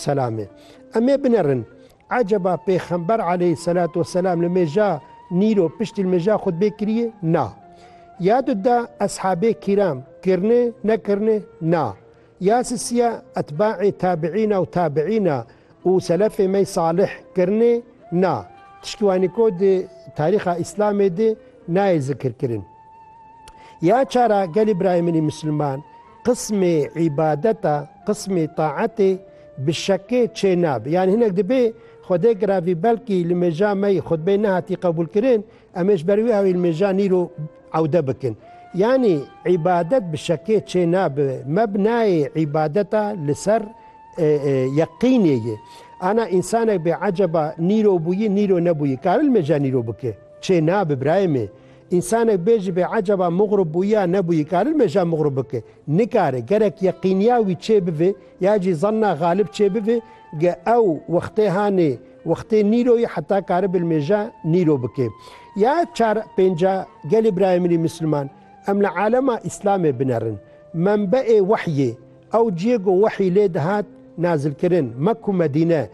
Selame. Em ê binerin. Eceba Pêxember aleyh selat û selam li mêja nîro piştî li mêja xutbê kirîye? Na. Ya du da eshabê kîram kirine, nekirine? Na. Ya sisiya etbaê tabiîna û tabiîna û selefê me salih kirine? Na. Tiştî wanî ku di tarîxa îslamê de nayê zikirkirin. Ya çar a gelê birayê min ê misliman, Qismê îbadeta, qismê taetê bi şekê çê nabe. Yanî hinek dibê Xwedê giravî belkî li mêja me yî xutbeyê nehatî qebûlkirin, em ê ji ber wî awî li mêja nîro ewde bikin. Yanî îbadet bi şekê çê nabe. Mebnayê îbadeta li ser yeqînê ye. Ana însanek bê eceba nîrobûyî, nîro nebûyî kare li mêja nîro bike? Çê nabe birayê me. Însanek bê ji bê ecaba mugrûb bûyî ya nebûyî karin mêja mugrûb bike? Nikare. Gerek yeqîniya wî çêbivê ya jî zanna xalib çêbivê ge ew wextê hanê wextê nîroyî heta karibil mêja nîro bike. Ya çar pênca gelê birayê min ê misliman, em li alema îslamê binerin. Menbeê wehyê, ew ciyê ku wehyî lê dihat nazilkirin, Mek û Medîne,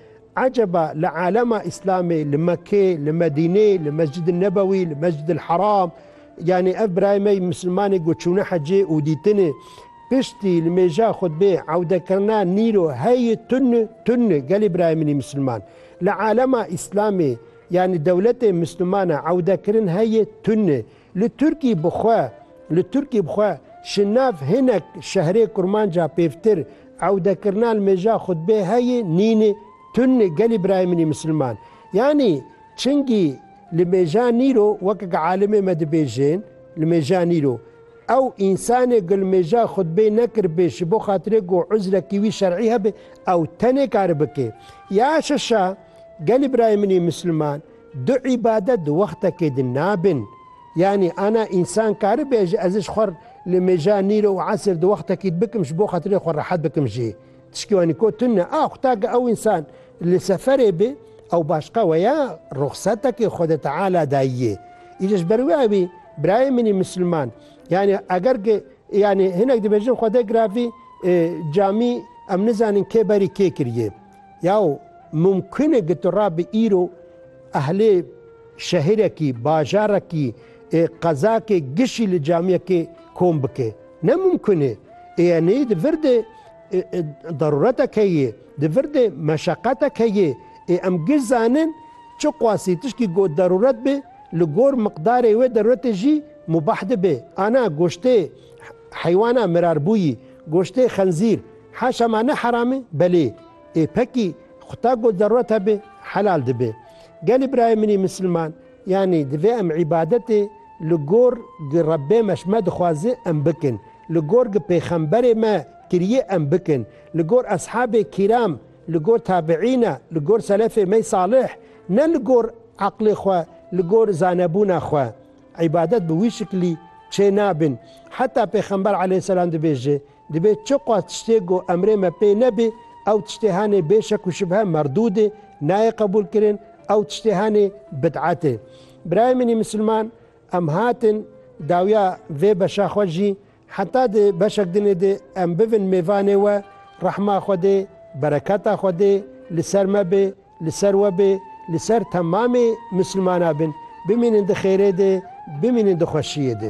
Eceba li alema Îslamê, li Mekke, li Medîne, li Mescid-i Nebewî, li Mescid-il Heram, yanî ev birayê me yê Mislimanê ku çûne hecê û dîtinê, piştî li mêja xutbê ewdekirina nîro heyê tun tun gelê birayê min ê Misliman. Li alema Îslamê, yanî dewletê Mislimana ewdekirin heyê tun Li Tirkî bi xwe Li Tirkî bi xwe ji nav hinek şehrê kurmanca pêvtir ewdekirina li mêja xutbê heyî nîn tun gelî birayê min î misilman yanî çingî li mêja nîro weke ke alimê me dibêjên li mêja nîro ew însanê ku li mêja xutbê nekir bê ji bo xatirê ku uzrekî wî şerî hebe ew tenê kari bike ya şeşa gelî birayê min î misilman Du îbadet di wextekê de nabin. Yanî ana însan karibe ji ezij xwe re li mêja nîr û esir di wextekî de bikim ji bo xatirê xwe rehet bikim jî tişkî wanî ko tun ne. Ax ta ke ew însan li seferê be ew başqa we ya ruxsetekê Xwedê Teala dayîyê. Îca ji ber wê ewî birayê min î misilman yanî eger ke yanî hinek dibêjin Xwedê giravî camî em nizanin kê berî kê kirîyê. Yaw mumkin e gitu ra bi îro ehlê şehirekî, bajarekî, qezakê gişî li camiyekê kom bike. Ne mumkin e. Ê enê di vir de daruretek heye, di vir de meşeqetek heye. Ê em giş zanin çi qasî tişkî got daruret be li gor miqdarê wê daruretê jî mubah dibe. Ana goştê heywana mirarbûyî, goştê xenzîr, Haşa ma ne heram e? Belê. Ê pekî, xwe ta got zerûret hebe, helal dibe. Gelê birayê min ê misilman, yanî divê em îbadetê li gor gi Rebbê me ji me dixwaze em bikin, li gor gi pêxemberê me kiriyê em bikin, li gor eshabê kîram, li gor tabiîna, li gor selefê me salih, ne li gor eqlê xwe, li gor zanebûna xwe. Îbadet bi wî şiklî çênabin. Heta pêxember eleyhîsselam dibêje. Divê çi qas tiştê ku emrê me pê nebê, ew tiştê henê bê şek û şibhe merdûd e, nayê qebûlkirin, ew tiştê henê bid'et e. Birayê min ê misilman, em hatin dawiya vê beşa xwe jî, heta di beşek din ê de em bivin mêvanê we, rehma Xwedê, bereketa Xwedê li ser me bê, li ser we bê, li ser temamê misilmana bin, bimînin di xêrê de, bimînin di xweşiyê de.